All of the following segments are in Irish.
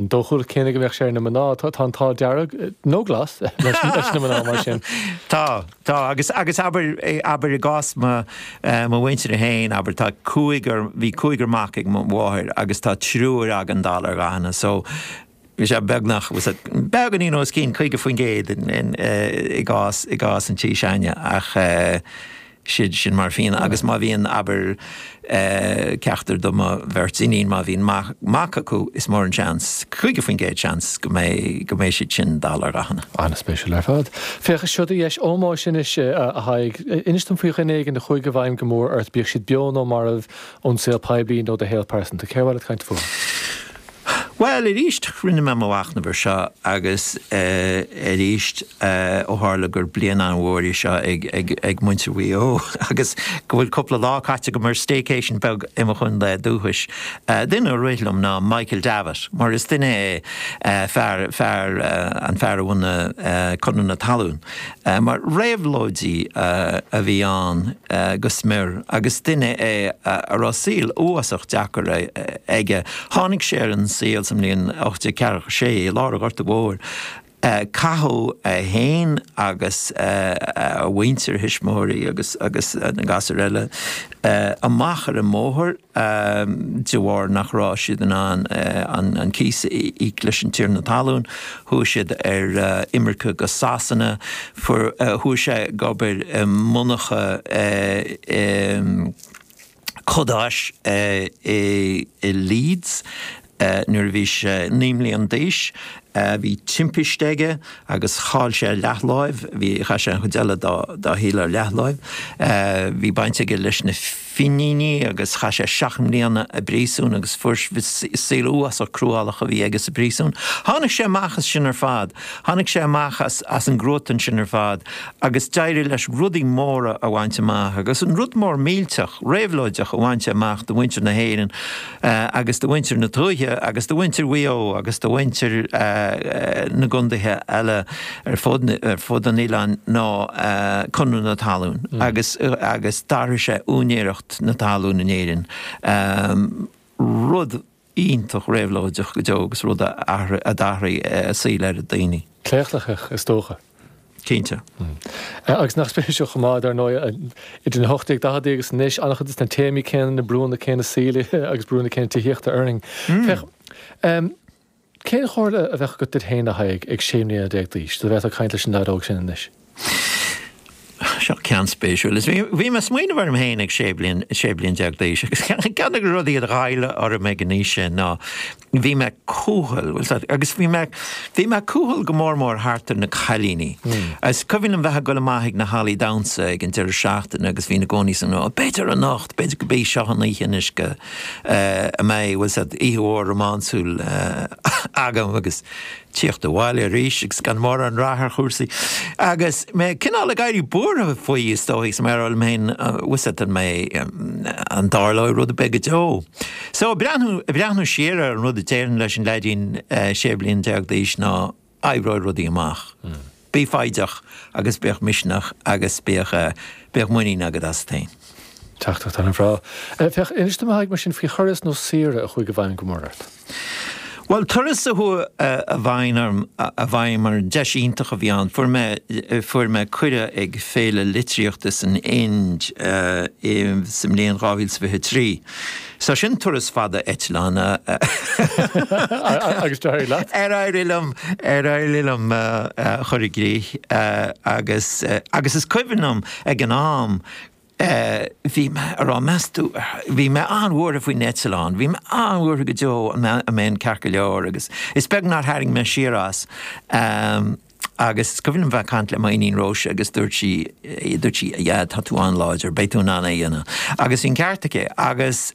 Dhá chóip den ghéin go mbeadh sé ar na mná, tá an t-ádh dearg, nó glas, leis na mná mar sin. Tá, tá. Agus, agus abair, abair i gcás mo, mo mhuintirse fhéin, abair, tá cúigear, bhí cúigear mac ag mo mháthair agus tá triúr againn dall ar dhathanna so bhí sé beagnach, bhuel sin beagáinín os cionn, 50% in, in, i gcás, i gcás an tí s'againne ach eh. siad sin mar phian. Agus má bhíonn, abair, ceachtar de mo bheirt iníon, má bhíonn mac acu, is mór an seans, caoga faoin gcéad seans, go mbeidh siad sin dall ar dhathanna. An-spéisiúil ar fad. Féach, is seo í do dheis ómóis anois, a Thaidhg. Inis dom faoi dhuine éigin a chuaigh i bhfeidhm go mór ort, bíodh siad beo nó marbh, ón saol poiblí nó do shaol pearsanta. Cé air a bhfuil tú ag caint fúthu? Bhuel, arís, rinne mé mo mhachnamh ar seo agus arís ó tharla gur bliain an-mhór í seo ag muintir Mhaigh Eo agus go bhfuil cúpla lá caite agam ar staycation beag i mo chontae dúchais, duine a rith liom ná Michael Davitt mar is duine é fear, fear, an fear a bhunaigh Conradh na Talún. Mar réabhlóidí a bhí ann go smior agus duine é a raibh saol uafásach deacair aige. Tháinig sé ar an saol sa mbliain 1846 i lár an Ghorta Mhóir. Caitheadh é féin agus a mhuintir, a thuismitheoirí agus na gasúir eile amach ar an mbóthar. de bharr nach raibh siad in ann an cíos a íoc leis an tiarna talún, chuaigh siad ar imirce go Sasana, chuaigh sé ag obair i monarcha codáis i Leeds, Nuair a bhí sé naoi mbliana d'aois bhí timpiste aige agus chaill sé a leathláimh, bhí, chaith sé an chuid eile dá shaol ar leathláimh. Bhí baint aige leis na Fíníní agus chaith sé seacht mbliana i bpríosún agus fuair, saol uafásach cruálach a bhí aige sa phríosún. Tháinig sé amach as sin ar fad, tháinig sé amach as an gcruatan sin ar fad agus d'éirigh leis rudaí móra a bhaint amach agus an rud mór millteach, réabhlóideach a bhain sé amach do mhuintir na hÉireann. agus do mhuintir na tuaithe agus do mhuintir Mhaigh Eo agus do mhuintir na gcondaethe eile ar fud an oileáin ná Conradh na Talún agus agus d'athraigh sé úinéireacht na talún in Éirinn, rud iontach réabhlóideach go deo agus rud a d'athraigh saol oiread daoine. Claochlaitheach is dócha. Cinnte. Agus nach spéisiúil chomh maith, dar ndóigh, idir na hocht déag daicheadaí agus anois, an-chuid de na téamaí céanna, na brúnna céanna saoil agus brúnna céanna tithíochta orainn. Féach, cén chomhairle a bheadh agat duit féin, a Thaidhg, ag sé mbliana déag d'aois, dá bhféadfá caint leis an leaid óg sin anois? Seo ceann spéisiúil, is bhí mé ag smaoineamh orm féin ag sé bliana déag d'aois agus ceann de na rudaí a ghoill orm ag an aois sin ná, bhí mé cúthail, bhfuil 'fhios a'd, agus bhí, bhí mé cúthail go mór mór thart ar na cailíní. Is cuimhin liom bheith ag dul amach ag na hallaí damhsa ag an deireadh seachtaine agus bhínn i gcónaí, tá's a'd, ó b'fhéidir anocht, b'fhéidir gurb í seo an oíche anois go mbeidh, bhfuil 'fhios a'd, oíche mhór rómánsúil agam agus teacht abhaile arís agus gan mórán rath ar chúrsaí. Agus mé cineál ag éirí buartha faoi, is dóigh, is mé rá liom féin, Ws'atd mé, an dtarlóidh rud ar bith go deo? So ag breathnú siar ar an rud a déarfainn leis an leaidín 16 bliain d'aois ná, oibreoidh rudaí amach. Bí foighdeach agus bíodh misneach agus bíodh, bíodh muinín agat asat féin. Teachtaireacht ana bhreá. Féach, inis dom a thaigh mar sin faoi thuras nó saoire a chuaigh i bhfeidhm go mor ort. Bhuel, turas a chuaigh i bhfeidhm orm, i bhfeidhm orm, deis iontach a bhí ann. Fuair mé, fuair mé cuireadh ag féile litríochta san Ind i, sa mbliain dhá mhíle 's fiche trí. So sin turas fada eitleáin. Ar éirigh liom, ar éirigh liom a chur i gcrích agus, agus is cuimhin liom ag an am bhí mé a' rá meas tú, bhí mé an-bhuartha faoin eitleán, bhí mé an-bhuartha go deo an mbeinn ceart go leor agus is beag nár tharraing mé siar as. Agus is cuimhin liom a bheith ag caint le m'iníon Róise agus dúirt sí, dúirt sí yeah tá tú an-láidir, beidh tú in ann é a dhéanamh. Agus bhí an ceart aici agus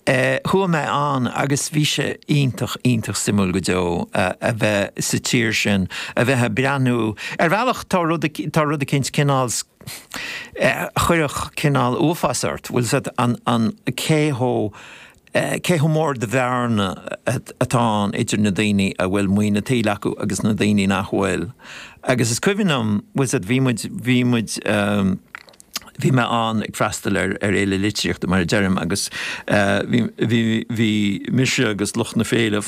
eh chuaigh mé ann agus bhí sé iontach, iontach suimiúil go deo a bheith sa tír sin, a bheith ag breathnú, ar bhealach tá rud, tá rud eicínt cineál eh a chuirfeadh cineál uafás ort, bhfuil 'fhios a'd, an, an, cé chomh Cé chomh mór de bhearna atá ann idir na daoine a bhfuil maoin a tsaoil acu agus na daoine nach bhfuil. Agus is cuimhin liom, bhuel bhí muid, bhí muid, bhí mé ann ag freastal ar Fhéile Litríochta mar a deirim agus bhí, bhí, bhí mise agus lucht na féile,